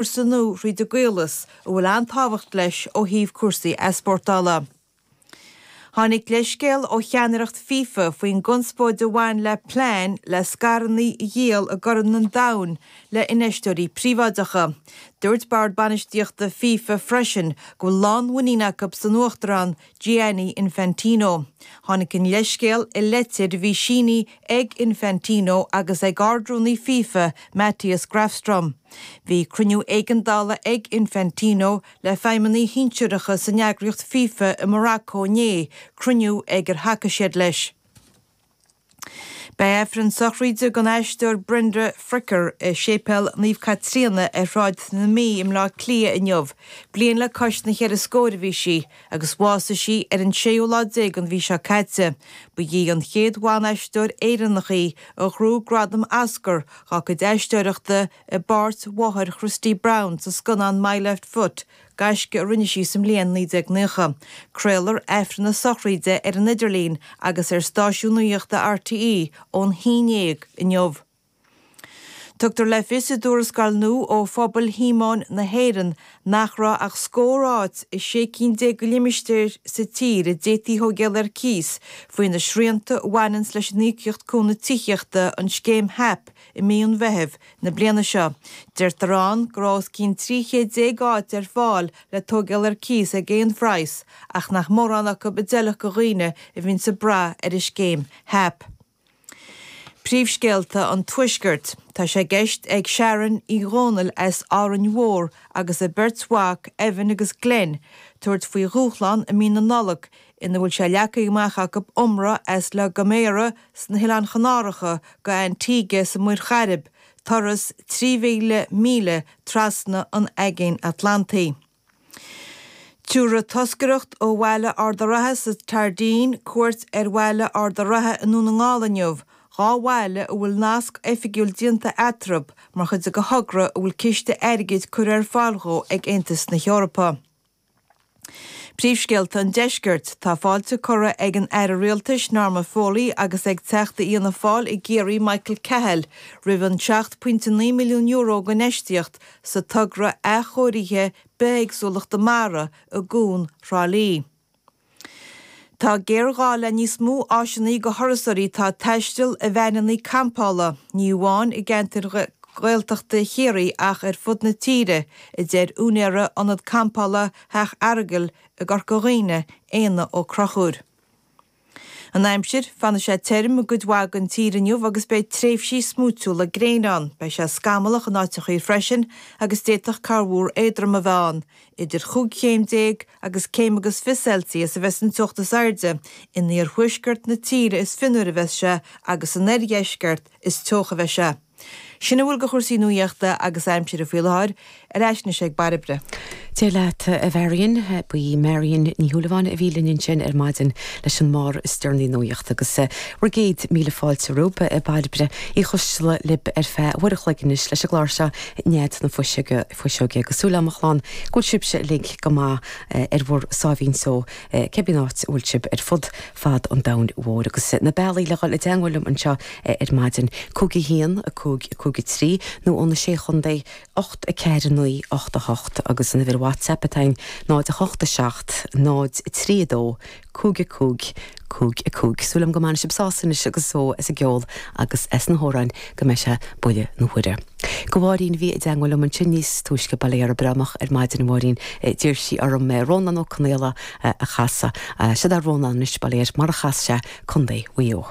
cúrsa nó trí de chaolas a bhfuil an-tábhacht leis ó thaobh cúrsaí easpórtála. Tháinig leithscéal ó cheannaireacht FIFA faoin gconspóid a bhain le plean le scaireanna a dhíol i gCorn an Domhain le infheisteoirí príobháideacha. Dúirt bord bainistíochta FIFA freisin go bhfuil lánmhuinín acu san Uachtarán Gianni Infantino. Tháinig an leithscéal i litir a bhí sínithe ag Infantino agus ag Ard-Rúnaí FIFA, Mattias Grafström. Bhí cruinniú éigeandála ag Infantino le feidhmeannaigh shinsearacha san eagraíocht FIFA i Maracó inné, cruinniú ag ar thacaigh siad leis. Beidh Aifreann sochraíde ag an aisteoir Brenda Fricker i Séipéal Naomh Caitríona ar Shráid na Mí i mBleá Cliath inniu. Bliain le cois na gceithre scór a bhí sí agus bhásaigh sí ar an séú lá déag den mhí seo caite. Ba í an chéad bhanaisteoir Éireannach í a ghnóthaigh gradam Oscar dá cuid aisteoireachta i bpáirt mháthair Christy Brown sa scannán My Left Foot, gaisce a rinne sí sa mbliain 1990. Craolfar Aifreann na sochraide ar an idirlíon agus ar stáisiún nuachta RTÉ ón haon déag inniu. Tugtar le fios i dtuarascáil nua ó Phobal Shíomóin na hÉireann nach raibh ach scór áit i sé cinn déag de limistéir sa tír a d'fhéadfaí a thóigeáil ar cíos faoi na srianta a bhaineanns leis an Íocaíocht Cúnaimh Tithíochta, an scéim HAP. i mí an Mheithimh na bliana seo. Deirtear ann go raibh os cionn 13 chéad áit ar fáil le tóigeáil ar cíos ag aon phraghas ach nach mórán acu a d'fheilfeadh do dhaoine a bhíonns ag brath ar an scéim HAP. Príomhscéalta an Tuaiscirt. Tá sé i gceist ag Sharon Uí Dhomhnaill as Árainn Mhór agus a beirt mhac, Evan agus Glen, tabhairt faoi dhúshlán i mí na Nollag ina bhfuil sé leagtha amach acu iomramh as La Gomera sna hOileáin Chanáracha go Antigua sa Mhuir Chairib, turas 3,000 míle trasna an Aigéin Atlantaigh. Tabharfaidh toscaireacht ó Bhaile Ard a' Ratha sa tSairdín cuairt ar Bhaile Ard a' Ratha i nDún na nGall inniu, dhá bhaile a bhfuil nasc oifigiúil déanta eatarthu mar chuid de thogra a bhfuil ciste airgid curtha ar fáil dhó ag Aontas na hEorpa. Príomhscéalta an Deiscirt. Tá fáilte curtha ag an Aire Rialtais, Norma Foley, agus ag Teachta Fhianna Fáil i gCiarraí, Michael Cahill, roimh an €7.9 milliún d'infheistíocht sa togra athchóirithe bithéagsúlachta mara i gCuan Thrá Lí. Tá géarghá le níos mó áiseanna do thurasóirí atá ag taisteal, i veaineanna campála, ní amháin i gceantair Ghaeltachta Chiarraí ach ar fud na tíre, a deir úinéara Ionad Campála Theach an Aragail i gCorca Dhuibhne, Éanna Ó Conchúir. An aimsir, fanfaidh sé tirim i gcuid mhaith den tír inniu agus beidh tréimhsí smúitiúla gréine ann. Beidh sé scamallach in áiteacha freisin agus d'fhéadfadh corrmhúr éadrom a bheith ann, idir chúig chéim déag agus céim agus fiche Celsius a bheidh san teocht is airde in iarthuaisceart na tíre is fionnuaire a bheas sé agus san oirdheisceart is teocha a bheidh sé. Sin a bhfuil de chúrsaí nuaíochta agus aimsire faoi láthair ar ais anois ag Bairbre. Dé leat, a Mharion. Ba í Marion Ní Shúilleabháin a bhí linn ansin ar maidin leis an mbarr is deireanaí nuaíochta agus bhur gcéad míle fáilte romhaibh, a Bairbre Uí Choisteala, libh ar feadh uair a chloig anois leis an gclár seo Nead na Fuiseoige. fuiseoige agus súil agam, a chlann, go bhfuil sibhse uilig go maith ar bhur sáimhín só, cé bith an áit a bhfuil sibh ar fud fad an domhain mhóir. Agus na bealaí le dhul i dteangmháil liom anseo ar maidin, cúig a haon, a cúig, a cúig a trí, nó ó na Sé Chontae, ocht, a ceathair, a naoi, ocht, a hocht, agus an uimhir WhatsApp atá againn, 0 8 7 0 3 2 cúig a cúig, cúig a cúig. Súil agam go mbainfidh sibh sásamh anois agus só as an gceol agus as na hamhráin go mbeidh sé Buille na huaire. Do Mharion a bhí i dteangmháil liom ansin níos túisce Bail ó Dhia uirthi breá moch ar maidin a Mharion D'iarr sí orm é Rónán Ó Conaola a chasadh Seod é Rónán anois bail ó Dhia air mar a chas sé Co. Mhaigh Eo.